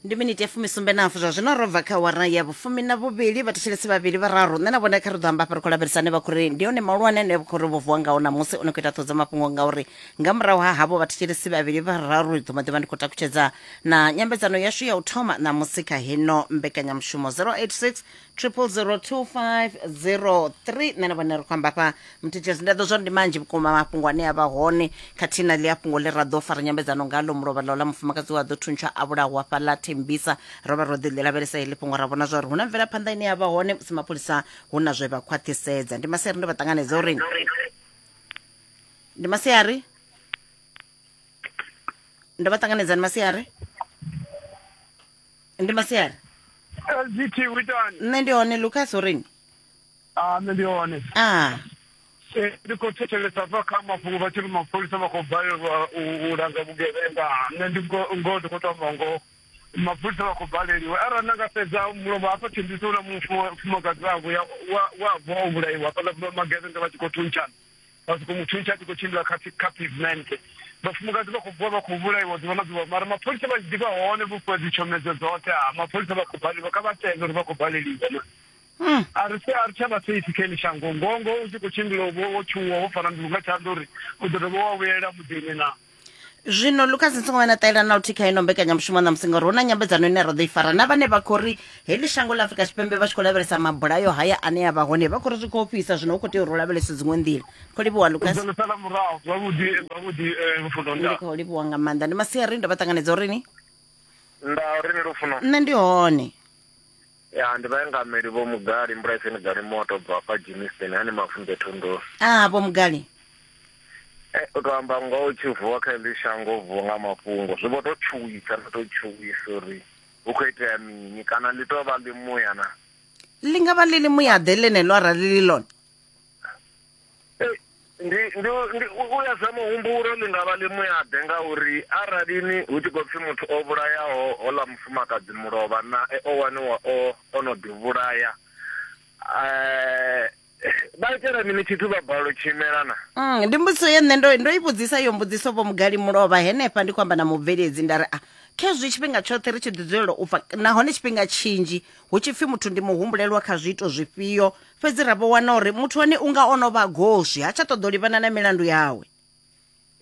ndi miniti ya fumisumbe nafu zwa zwino ro bva kha wara ya vhufumi na vhuvhili vhathetshelesi vhavhili vhararu nṋe na vhone kha ri ḓo amba hafha ri khou lavhelisane vha khou ri ndi hone mahulwane ane vha khou ri vho vuwa ngao ṋamusi o no khou ita ṱhodzo mafhungo ngauri nga murahu ha havho vhathetshelesi vhavhili vhararu ri ḓo maḓivha ndi khou takutshedza na nyambedzano yashu ya u thoma ṋamusi kha heno mbekanyamushumo 086 triple zero two five zero three nṋe na vhone ri khou amba fha mthethesi nda ḓo zwari ndi manzhi vhukuma mafhungo ane a vha hone khathihi na ḽi a fhungo ḽi ra ḓo fara nyambedzano ngalo mulovha ḽo ḽa mufumakadzi wa ḓo thuntsha a vhulaho hafha ḽa thembisa ro vha ro ḓi ḽi lavhelesa heḽi fhungo ra vhona zwa uri hu na mvelaphanḓa ine ya vha hone musi mapholisa hu na zwe vha khwaṱhisedza ndi masiari ndo vha ṱanganedza uri ndi masiari ndo vha ṱanganedza ndi masiari ndi masiari lgt u itani nṋe ndi hone lucas ureni a nṋe ndi hone a Eh, ndi khou thetshelesa bva kha mafhungo vha tshi ri mapholisa vha khou balelwa u u langa vhugevhenga nṋe ndi ngo- ngoho ndi khou tou amba ngoho mapholisa vha khou baleliwa arali na nga sedza mulovha hafha tshimbiso u na mufumakadzi wavho ya- wa- wavho o vhulaiwa hafhaḽa magevhenga vha tshi khou thuntshana vha soko mu thuntsha a tshi khou tshimbila kha kha pavement vhafumakadzi vha khou vuwa vha khou vhulaiwa ḓuvha na ḓuvha mara mapholisa vha ḓivha hone vhukuma dzi tshomedzo dzoṱhe ha mapholisa vha khou baleliwa kha vha tende uri vha khou baleliwa na hmm. a ri se a ri tsha vha safe kha shango ngongo u tshi khou tshimbila wo tshuwa wo fara nḓulu nga tshanḓa uri u ḓo dovha wa vhuyela muḓini na zwino lucas ni songo vha na ṱalela na luthihi kha ino mbekanyamushumo ṋamusi ngauri hu na nyambedzano ine ra ḓo i fara na vhane vha khou ri heḽi shango ḽa afurika tshipembe vha tshi khou lavhelesa mabulayo haya ane a vha hone vha khou ri zwi khou fhisa zwino hu khou tea uri u lavhelese dziṅwe nḓila khou livhuwa lucas Zwo sala murahu zwavhuḓi zwavhuḓi eh, lufuno ndi nda khou livhuwa nga maanḓa ndi masiari ndo vha ṱanganedza uri ni nda uri ni lufuno nṋe ndi hone Ya, ndi vhaengameli Vho Mugali, Mbulaiseni Galimoto u bva hafha Germiston, hani Mavunḓe Thondoni. Ah, Vho Mugali. Eh, u tou amba ngoho u tshi vuwa kha heḽi shango u vuwa nga mafhungo. Zwi vho tou tshuwisa na tou tshuwisa uri hu khou itea mini kana ḽi tou vha ḽimuya na. Ḽi nga vha ḽi ḽimuya-ḓe ḽeneḽo arali ḽi ḽone. ndi ndi ndi u ya sa muhumbulo ndi nga vha ḽi muyaḓe ngauri arali ni hu tshi khou pfhi muthu o vhulayaho hola mufumakadzi mulovha nae o waniwa o o no ḓi vhulaya eh vha itela mini tshithu vha balelwa u tshimela na mm, ndi mbudziso ye nṋe ndo ndo i vhudzisa yo mbudziso vho mugali mulovha henefha ndi khou amba na mubveledzi nda ri a ah, khezwi tshifhinga tshoṱhe ri tshi ḓi dzulela u pfa nahone tshifhinga tshinzhi hu tshi pfhi muthu ndi muhumbulelwa kha zwiito zwifhio fhedzi ra vho wana uri muthu hone u nga o no vha goswi ha tsha ṱoḓa u livhana na milandu yawe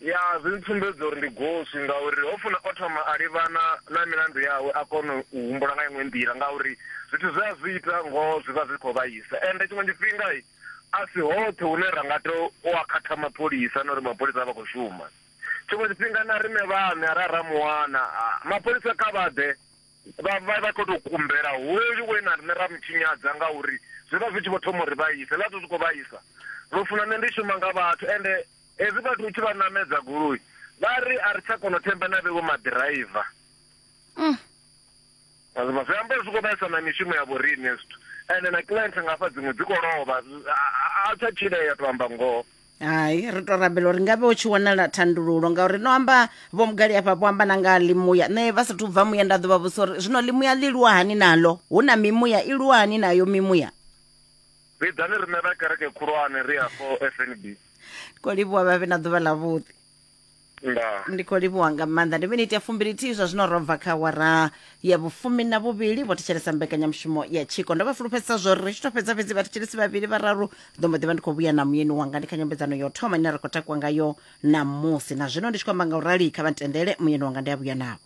ya zwi ntsumbedza uri ndi goswi ngauri ho funa o thoma a livhana na milandu yawe a kona u humbula nga iṅwe nḓila ngauri zwithu zwe a zwi ita ngoho zwi vha zwi khou vhaisa ende tshiṅwe tshifhinga a si hoṱhe hune ra nga to u a khatha mapholisa na uri mapholisa a vha khou shuma tshiṅwe tshifhinga na riṋe vhaṋe a ra ra muwana mapholisa kha vha ḓe Vha vha vha khou tou kumbela hoyu we na riṋe ra mu tshinyadza ngauri zwi vha zwi tshi vho thoma u ri vhaisa. Hezwiḽa zwithu zwi khou vhaisa. Lufuno, Nṋe ndi shuma nga vhathu ende hezwi vhathu u tshi vha ṋamedza goloi vha ri a ri tsha kona u themba na vhevho maḓiraiva. Wa zwi vhona? Zwi amba uri zwi khou vhaisa na mishumo ya vhoriṋe hezwi zwithu. Ende na client nga hafha dziṅwe dzi khou lovha. A a tsha tshilea, tou amba ngoho. hai ri to rabela uri ngavhe u tshi wanala thandululo ngauri no amba vho mugali afha vho amba na nga limuya nṋe vha sathu bva muya nda ḓo vha vhusa uri zwino limuya ḽi lwa hani nalo hu na mimuya i lwa hani nayo mimuya vhidzani riṋe vha kereke khulwane ri afho fnb ko livhuwa vhavhe na ḓuvha ḽavhuḓi ndaa ndi khou livhuwa nga maanḓa ndi miniti ya fumbilithihi zwa zwino ro bva kha wara ya vhufumi na vhuvhili vho thetshelesa mbekanyamushumo ya tshiko ndo vha fulufhedzisa zwo ri ri tshi to fhedza fhedzi vhathetshelesi vhavhili vhararu ndo mbo ḓi vha ndi khou vhuya na muyeni wanga ndi kha nyambedzano ya u thoma ine ra khou takuwa ngayo ṋamusi na zwino ndi tshi khou amba nga u rali kha vha ntendele muyeni wanga ndi a vhuya navho